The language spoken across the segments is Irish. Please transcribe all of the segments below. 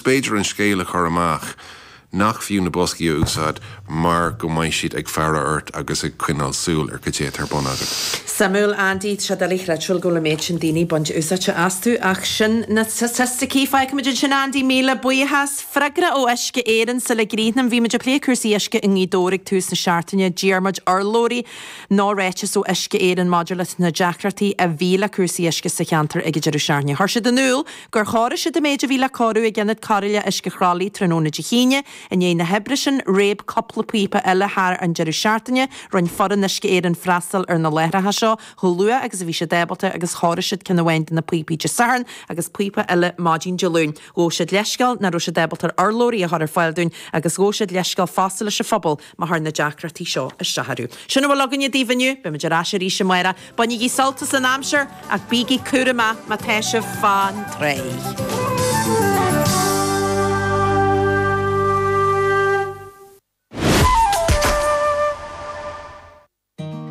b'fhéidir an scéal a chur amach nach fiú na boscaí a úsáid mar go mbeidh siad ag faire ort agus ag coinneáil súil ar caidé atá ar bun agat. Suimiúil, Andy. Tá sé doiligh a chreidbheáil go bhfuil an méid sin daoine ag baint úsáide astu, ach sin na staitisticí. Fágfaimid ansin, Andy, míle buíochas. Freagra ó Uisce Éireann, sula gcríochnam, bhí muid ag plé cúrsaí uisce i nGaoth Dobhair ag tús na seachtaine. D'iarr muid urlabhraí nó ráiteas ó Uisce Éireann maidir leis na deacrachtaí a bhí le cúrsaí uisce sa cheantar ag an deireadh seachtaine. Chuir siad in iúl, gur chóirigh siad an méid a bhí le cóiriú ag Ionad Cóireála Uisce Chroithlí tráthnóna Dé hAoine. I ndiaidh na hoibre sin, réab cúpla píopa eile thar an deireadh seachtaine. Rinne foireann Uisce Éireann freastal ar na láithreacha seo chomh luath agus a bhí siad ábalta agus chóirigh siad ceann amháin de na píopaí Dé Sathairn agus píopa eile maidin Dé Luain. Ghabh siad leithscéal nach raibh siad ábalta urlabhraí a chur ar fáil dúinn agus ghabh siad leithscéal fosta leis an phobal má chuir na deacrachtaí seo isteach orthu. Sin a bhfuil againn daoibh inniu. Beimid ar ais arís amáireach. Bainigí sult as an aimsir ach bígí cúramach má tá sibh fán tráigh.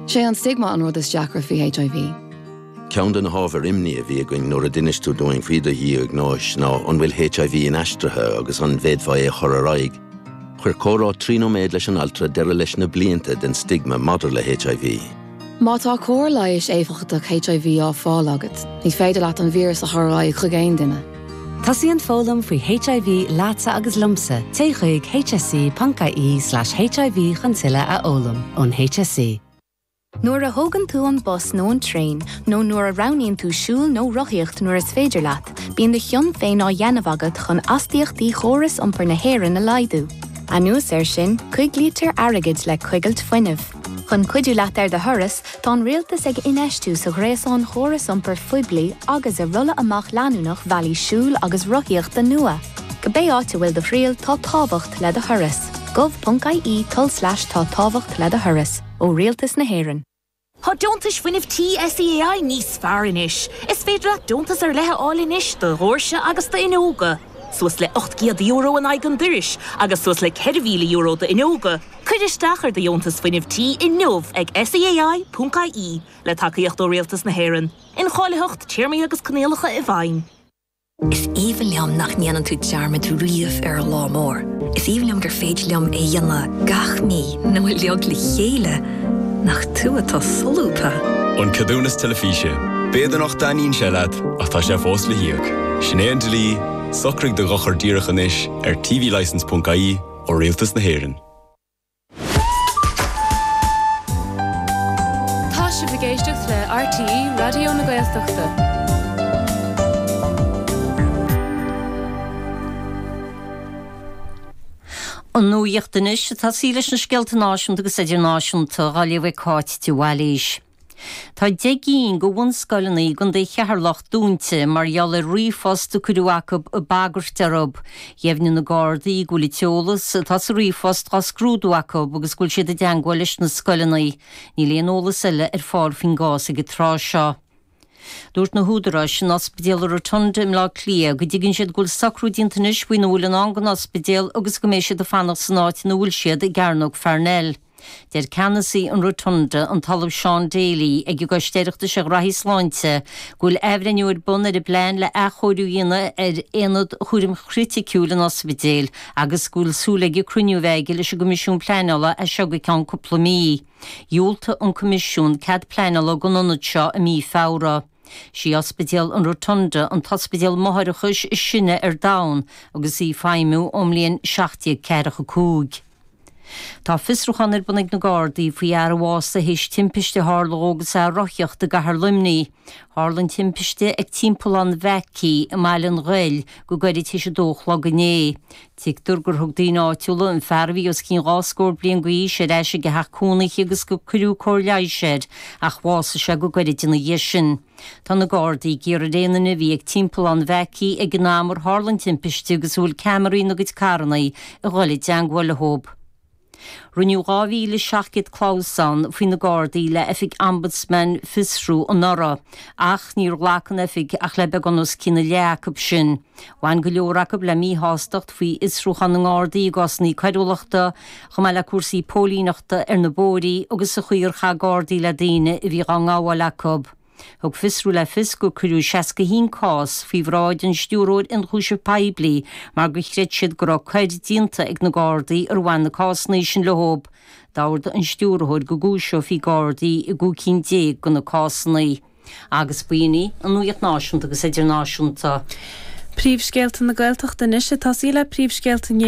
Sé an stigma an rud is deacra faoi HIV. Ceann de na hábhair imní a bhí againn nuair a d'inis tú dúinn faoi do dhiagnóis ná an bhfuil HIV inaistrithe agus an bhféadfá é a chur ar aghaidh. Chuir comhrá trí nóiméad leis an altra deireadh leis na blianta den stigma maidir le HIV. Má tá cóir leighis éifeachtach HIV á fáil agat, ní féidir leat an víreas a chur ar aghaidh chuig aon duine. Tosaíonn foghlaim faoi HIV leatsa agus liomsa, téigh chuig hse.ie slash HIV chun tuilleadh a fhoghlaim. Ón hse. Nuair a thógann tú an bus nó an traein, nó nuair a roghnaíonn tú siúl nó rothaíocht nuair is féidir leat, bíonn do chion féin á dhéanamh agat chun astaíochtaí chóras iompair na hÉireann a laghdú. Anuas air sin, coiglítear airgead le coigilt fuinnimh. Chun cuidiú leat ar do thuras, tá an Rialtas ag infheistiú sa ghréasán chóras iompair phoiblí agus i rolladh amach leanúnach bhealaí siúil agus rothaíochta nua. Cibé áit a bhfuil do thriall, tá tábhacht le do thuras. gov.ie tulslais tá tábhacht le do thuras. Ó Rialtas na hÉireann. Tá Deontais Fuinnimh Tí SEAI níos fearr anois! Is féidir leat deontas ar leith a fháil anois do dhóirse agus d'fhuinneoga. suas le €800 in aghaidh an dorais agus suas le €4,000 d'fhuinneoga, cuir isteach ar do dheontas fuinnimh tí inniu ag SEAI.ie, le tacaíocht ó Rialtas na hÉireann. Incháilitheacht, téarmaí agus coinníollacha i bhfeidhm. Is aoibhinn liom nach ndéanann tú dearmad riamh ar an lá mór. Is aoibhinn liom gur féidir liom é dhéanamh gach mí, nó uilig le chéile! Nach tú atá solúbtha? An ceadúnas teilifíse. B'fhéidir nach dtaitníonn sé leat ach tá sé fós le híoc. Sin é an dlí. Socraigh do dhochar díreach anois ar tvlicence.ie ó Rialtas na hÉireann. Tá sibh ag éisteacht le RTÉ Raidió na Gaeltachta. An nuaíocht anois tosaí leis na scéalta náisiúnta agus idirnáisiúnta dhá léamh ag Cáit de Bhailís. Tá deich gcinn de bhunscoileanna i gContae Cheatharlach dúnta mar gheall ar ríomhphost a cuireadh chucu ag bagairt orthu. Dheimhnigh na Gardaí go bhfuil an t-eolas atá sa ríomhphost dhá scrúdú acu agus go bhfuil siad i dteangmháil leis na scoileanna. Níl aon eolas eile ar fáil faoin gcás ag an tráth seo. Dúirt na húdaráis in Ospidéal Rotunda i mBleá Cliath go dtuigeann siad go bhfuil socrú déanta anois faoina bhfuil i ndán don ospidéal agus go mbeidh siad ag fanacht san áit ina bhfuil siad, i gCearnóg Pharnell. Deir ceannasaí an Rotunda, an tOllamh Seán Daly, ag an gCoiste Oireachtais ar Ghraithí Sláinte go bhfuil athbhreithniú ar bun ar an bplean le athchóiriú a dhéanamh ar Aonad Chúraim Chriticiúil an ospidéil agus go bhfuil súil aige cruinniú a bheith aige leis an gCoimisiún Pleanála as seo go ceann cúpla mí. Dhiúltaigh an Coimisiún cead pleanála don aonad seo i mí Feabhra. Is í Ospidéal an Rotunda an t-ospidéal máithreachais is sine ar domhan agus í ag feidhmiú ón mbliain 1745. Tá fiosrúchán ar bun ag na Gardaí faoi fhear a bhásaigh théis timpiste a tharla dhó agus é ag rothaíocht i gCathair Luimnigh. Tharla an timpiste ag Timpeallán Mhackey i mBaile an Ghoill go gairid tar éis 2 a chlog inné. Tuigtear gur thug daoine áitiúla an fear a bhí os cionn dhá scór bliain d'aois ar ais ag a theach cónaithe agus gur cuireadh cóir leighis air ach bhásaigh sé go gairid ina dhiaidh sin. Tá na Gardaí ag iarraidh ar aon duine a bhí ag Timpeallán Mhackey ag an am ar tharla an timpiste agus a bhfuil ceamaraí ina gcuid carranna a dhul i dteangmháil leo. Rinneadh 2,700 clamhsán faoi na Gardaí le hOifig Ombudsman Fiosrú anuraidh, ach níor ghlac an Oifig ach le beagán os cionn a leath acu sin. Bhain go leor acu le míshástacht faoi fhiosrúcháin na nGardaí i gcásanna coiriúlachta, chomh maith le cúrsaí póilíneachta ar na bóithrí agus sa chaoi ar chaith Gardaí le daoine a bhí dhá ngabháil acu. Thug Fiosrú le fios gur cuireadh 61 cás faoi bhráid an Stiúrthóir Ionchúiseamh Poiblí mar gur chreid siad go raibh coir déanta ag na Gardaí ar bhain na cásanna sin leo. D'ordaigh an Stiúrthóir go gcúiseofaí Gardaí i gcúig cinn déag de na cásanna. agus b'in í an nuaíocht náisiúnta agus idirnáisiúnta. Príomhscéalta na Gaeltachta Anois tosaí le príomhscéalta na